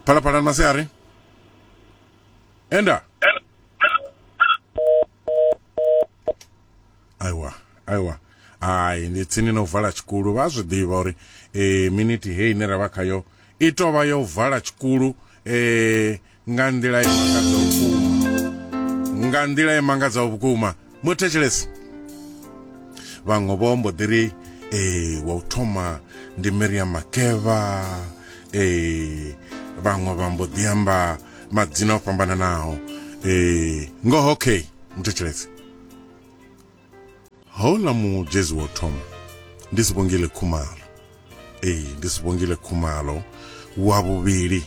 phalaphala ni masiari enda aiwa aiwa hai ndi tsini na u vala tshikulu vha zwi ḓivha uri e, miniti heyi ine ra vha khayo i tou vha yo vala tshikulu e, nga nḓila i mangadzaho vhukuma nga nḓila i mangadzaho vhukuma muthetshelesi vhaṅwe vho mbo ḓi ri ee wa u thoma ndi miriam makeva ee vhaṅwe vha mbo ḓi amba madzina o fhambananaho ee ngoho okay muthetshelesi Houḽa mugezi wo thoma ndi Sibongile Khumalo. Ee, ndi Sibongile Khumalo. Wa vhuvhili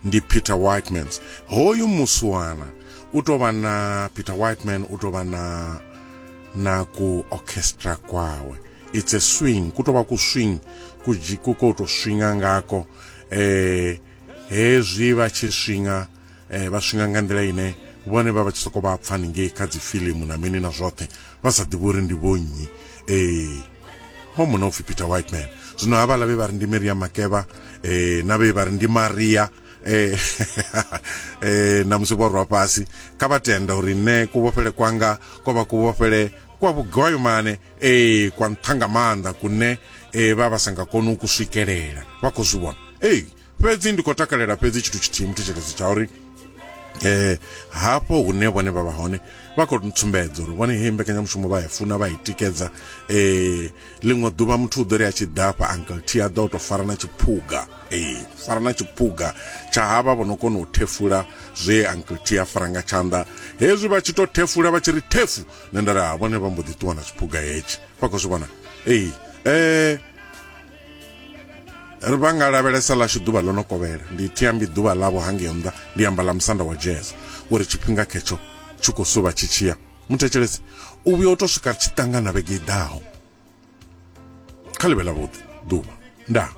ndi Peter Whitemans. Hoyu muswana u tou vha na Peter Whiteman u tou vha na na ku orchestra kwawe. It's a swing, ku tou vha ku swing ku dzhi- ku ko to swinga ngako eh hezwi vha tshi swinga eh, vha swinga nga nḓila ine vhone vha vha tshi sokou vha pfani ngei kha dzi filimu na mini na zwoṱhe vha sa ḓivhi uri ndi vhonnyi ee ho muna upfhi peter white man zwino havhala vhe vha ri ndi maria makeva eh, na vhe vha ri ndi maria eh, eh, na musi vho rwa fhasi kha vha tenda uri nṋe kuvhofhele kwanga ko vha kuvhofhele kwa vhugwayomane ee kwa nṱhanga maanḓa kune eh, vha vha sa nga koni u ku swikelela vha khou zwi vhona ee fhedzi ndi khou takalela fhedzi tshithu tshithihi muthetshelezi tsha uri um hafho hune vhone vha vha hone vha khou tsumbedzo uri vhone he mbekanyamushumo vha ya funa vha i tikedza um ḽiṅwe ḓuvha muthu u ḓo ri a tshi ḓafha uncle t a ḓa u tou fara na tshiphuga um fara na tshiphuga tsha havha vho no kona u thefula zwe uncle t a fara nga tshanḓa hezwi vha tshi tou thefula vha tshi ri thefu nṋe nda ri ha vhone vha mbo ḓi ṱuwa na tshiphuga hetshi vha khou zwi vhona ee um ri vha nga lavhelesa ḽashu ḓuvha ḽo no kovhela ndi thiambi ḓuvha ḽavho hangei nnḓa ndi amba ḽa musanda wa jazz uri tshifhinga khetsho tshi khou suvha tshi tshiya muthetshelesi u vhuya u tou swika ri tshi ṱangana vhege i ḓaho kha ḽivhe ḽavhuḓi ḓuvha ndaa